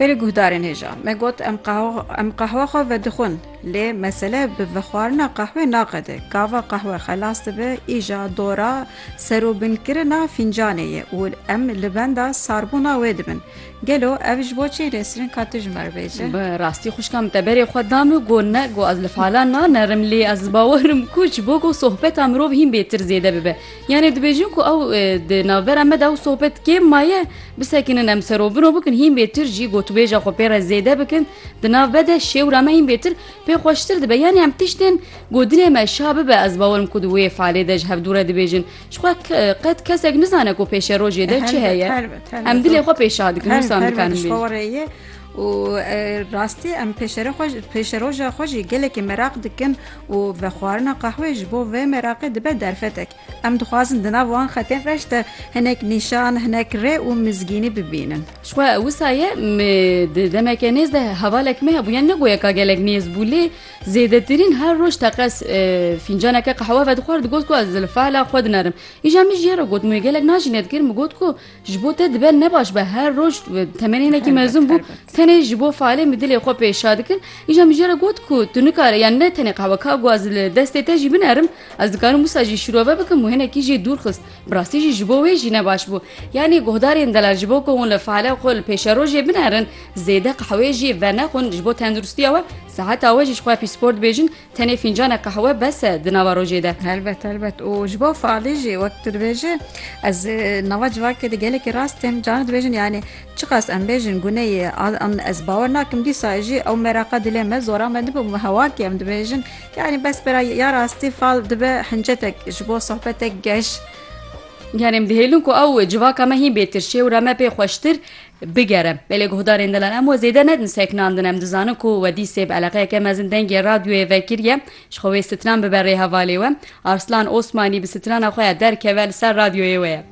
Berê guhdarên hêja me got em em qehwa xwe vedixwin lê mesele bi vexwarina qehwê naqede gava qehwe xelas dibe îja dora serûbinkirina fîncanê ye û em li benda sarbûna wê dibin gelo ev ji bo çê nesrin ka tu ji me bêje rastî xuşka min te berê xwe da min got ne got ez li falan nanerim lê ez bawerim ku ji bo ku sohbeta mirov hîn bêtir zêde bibe Yanê dibêjin ku ew di navbera me de ew sohbet kêm maye bisekinin em serobino bikin hîn bêtir jî gotûbêja xwe pê re zêde bikin di nav be de şêwra me hîn bêtir pê xweştir dibe yanê em tiştên ku dilê me şa bibe ez bawerim ku di wê falê de ji hevdû re dibêjin jixwe qet kesek nizane ku pêşerojê de çi heye em dilê xwe pê şa dikin wisa dikarin bê û rastî em pêşere xwe pêşeroja xwe jî gelekî meraq dikin Û vexwarina qehwê ji bo vê meraqê dibe derfetek. Em dixwazin di nav wan xetên reş de hinek nîşan, hinek rê û mizgînî bibînin. Jixwe wisa ye di demeke nêz de hevalek me hebû. Yan ne goya ka gelek nêz bû lê zêdetirîn her roj teqez fîncaneke qehwe vedixwar digot ku ez li feala xwe dinerim. Îja min jî ya re got min wê gelek najîne dikir min got ku Ji bo te dibe ne baş be her roj temenê hinekî mezûn bû tenê ji bo falê min dilê xwe pê şa dikin îja min jê re got ku tu nikare yan ne tenê qehwe ka guaz li destê te jî binerim ez dikarim wisa jî şirove bikim û hinekî jê dûr xist bi rastî jî ji bo wê jî ne baş bû yanî guhdarên delal ji bo ku hûn li fale xwe li pêşerojê binerin zêde qehweyê jê venexwin ji bo tenduristiya we seheta we jî ji xwe pîspor dibêjin Tenê fîncanê qehwe bes e di nava rojê de. Helbet helbet û ji bo faalî jî wek tu dibêjin ez nava civakê de gelekî rast têm caran dibêjin yanî çiqas em bêjin guneyê an ez bawer nakim dîsa jî ew meraqa dilê me zora me dibe û hewakê em dibêjin yanî bes bira ya rastî fal dibe hincetek ji bo sohbetek geş. Yanê em dihêlin ku ew civaka me hîn bêtirşê û re me pê xweştir Bigere. Lê lê guhdarên dilan em we zêde nedin sekinandin. Em dizanin ku we dîsê bi eleqeyeke mezin dengê radyoyê vekiriye ji xwe wê stran bibe rê hevalê we. Arslan Osmanî bi strana xwe ya derkeve li ser radyoyê we ye.